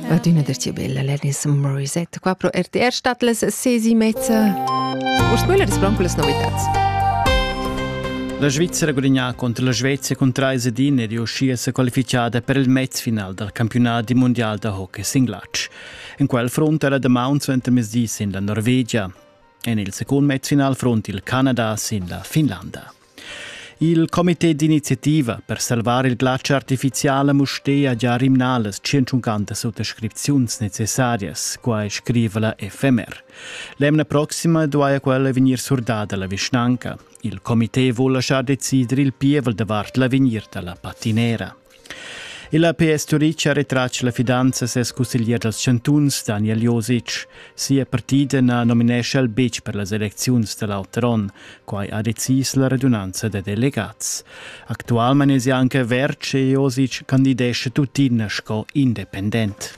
Adina der tiu bel Alanis Morissette qua pro RTR stat les sesi mezza. Urs quella des blanco les novitats. La Svizzera gudignà contro la Svezia con 3 edin è riuscita a qualificare per il mezfinal dal campionato mondial da hockey singlatsch. In quel front era da Mount suenter mesdi sin la Norvegia. En il secondo mezfinal front il Canada sin la Finlanda. Il comité d'iniziativa per salvar il glatsch artificial a Mustér ha già rimnalas 150 suttascripziuns necessarias, quai scriva la FMR. L'emna proxima duaja quella vegnir surdada la vischnanca. Il comité vul lasciar decider il pievel davart l'avegnir da la patinera. La PS Turitg ha retratg la fidanza a ses cusseglier dals chantuns, Daniel Josic. Sia partida na nominescha el betg per las elecziuns da l'alter onn. Quai ha decis la radunanza da delegats. Actualmain è anche Verce Josic candidescha tuttina sco independent.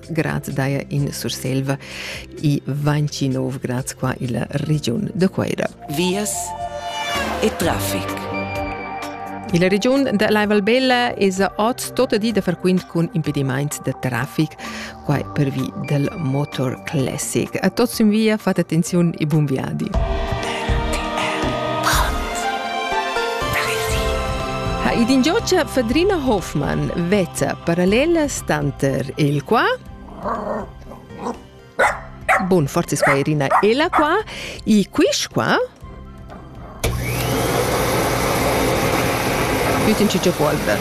grad daja in Surselva i vainci nov grad qua illa regiun de Queira. Vias e trafic. La regiun da Laivalbella es oz tota di da frequent cun impedimaints de trafic, quai pervi del Motor Classic. A tots in via fate attenziun e buon viadi. Ha id in giocia Fadrina Hoffmann vezza parallelas Tanter il qua Bun, forzis qua Irina e la qua. I quish qua Bütin cicio polvra.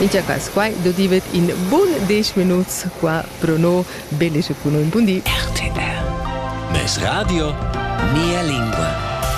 In cia cas quai dodivet in bun 10 minuts qua pro no, bene se cuno in bundi. RTR. Mes radio, mia lingua.